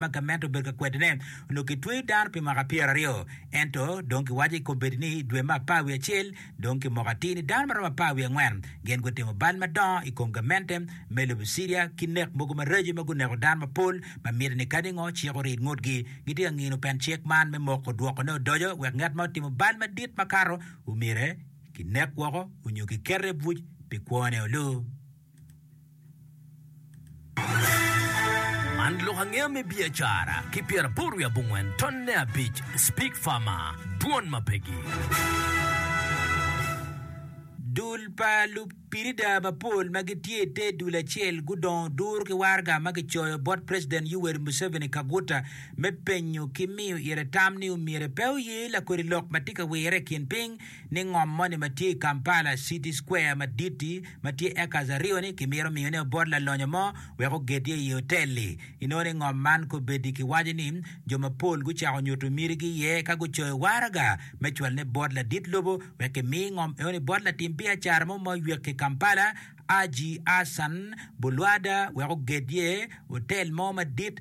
ma gamente obedo ka kwedone, onongo kitweyo dano pi mwaka pyeraryo. Ento, dong kiwaco i kombeddi ni i dwe me apar wiye acel, dong ki moko atir ni dano ma romo apar wiye angwen gin gutimo bal madongo i kom gamente me lobo Ciria ki nek mogo maraco ma guneko dano mapol ma miti ni kadi ngo cik orid ngutgi. Gitye ka ngino pen cik man me moko dwokone odoco wek ngat ma otimo bal madit makato omyere kinek woko onyo kikete i buc pi kwone olu. Man lok angeya me biacara ki pyeraboro wiye abongwen tonne abic Spig Farmer, Dwon ma pegi. Dul pa lupirida mapol ma gitye i te dul acel gudongo duru ki waraga ma kicoyo bot President Yoweri Museveni Kaguta me penyo ki miyo ire tam ni omyero pe oye lakodi lok ma tye ka wirre i kin piny ni ngom moni ma tye i Kampala City Square madit-ti ma tye acres aryo-ni kimito miyone obot lalonyo mo wek oged iye i ye otel-li. Inongo ni ngom man kobedi kiwaco ni jo mapol gucako nyuto mitigi iye ka gucoyo waraga me cwalone bot ladit lobo wek kimi ngom enoni bot latim biacara mo ma oywek ki Kampala, Haji Hassan Bulwada wek oged iye otel mo madit.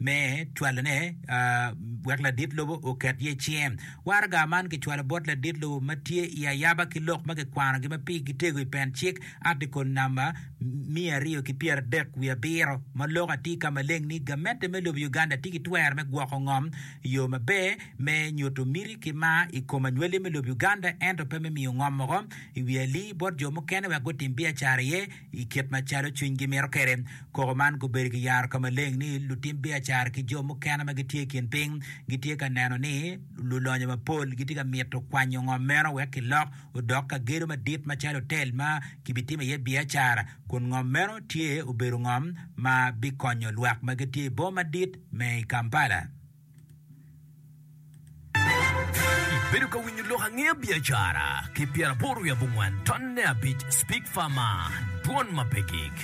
me cwalone wek ladit lobo oket iye cinge. Waraga man kicwalo bot ladit lobo ma tye i ayaba ki lok ma kikwanogi ma pigi gitego i pen cik, Article namba miya aryo ki pyera adek wiye abiro, ma lok atir ka maleng ni gamente me lobo Uganda tye ki twero me gwoko ngom i yo maber me nyuto miti ki mar i kom anywalye me lobo Uganda ento pe me miyo ngom moko i wi ali bot jo mukene wek gutim biacara iye. I kit macalo cwinygi mito kwede, koko man gubedo ki yaro ka maleng ni lutim biacara ki jo mukene ma gitye i kin piny gitye ka neno ni lulonyo mapol gitye ka mito kwanyo ngom meno wek kilok odok ka gedo madit macalo otel ma kibitimo iye biacara, kun ngom meno tye obedo ngom ma bikonyo lwak ma gitye i boma madit me Kampala. Ibedo ka winyo lok ange biacara ki pyera aboro wiye abongwen ton ne abic speak fama dwon ma pe gik.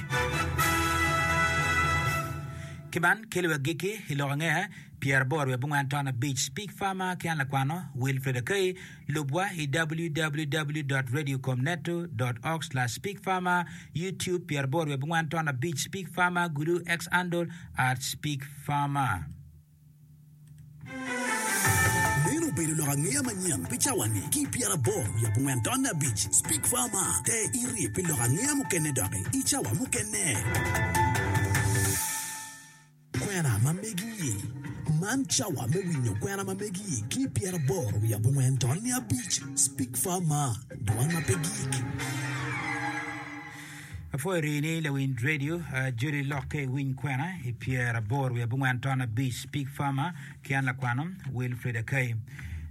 Ki man kelo wek giki i lok ange pyera aboro wiye abongwen ton abic speak fama ki an lakwano Wilfred Akai lubwa i www.radiocomneto.org/speakfama YouTube pyera aboro wiye abongwen ton abic speak fama gulu xandle @speakfama. Meno obedo lok angeya manyen pi cawani ki i pyeraboro wiye abongwen taman abic. Speak Farmer, Te irye pi lok angeya mukene doki i cawa mukene. Kwena ma megi Man cawa me winyo kwena ma megi ki i pyeraboro wiye abongwen taman abic. Speak Farmer, Dwan ma pe gik. Apwoyo rii ni lawiny radio Judi lokke iwiny kwena i pyer abor wiye abongwen ton abic Pig Farmer ki an lakwano Wilfrid Akai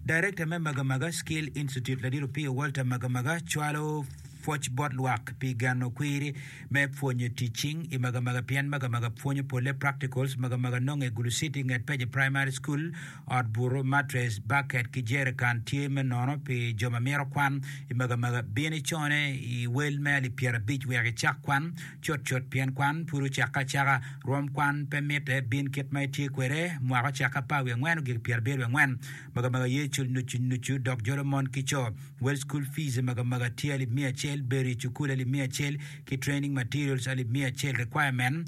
Director me Magamaga Skill Institute Ladit Opiyo Walter Magamaga cwalo pwoc bot lwak pi geno kwiri me pwonyo tic cing i Magamaga pien Magamaga pwonyo polle practicals Magamaga nonge Gulu City nget Peje Primary School Ot buto, matres, baket, ki jerikan tye me nono pi jo ma mito kwan. I magamaga, bin icone i wel me alip pyerabic wek icak kwan cutcut pien kwan pud ocakke acaka. Rwom kwan pe mitte, bin kit ma itye kwede. Mwaka ocakke apar wiye angwen ogik pyerabiro wiye angwen. Magamaga ye cul nucu nucu dok jolo mon ki co. Wel School Fees i magamaga tye alip miya acel, bedo i cukul alip miya acel, ki Training Materials alip miya acel, Requirement.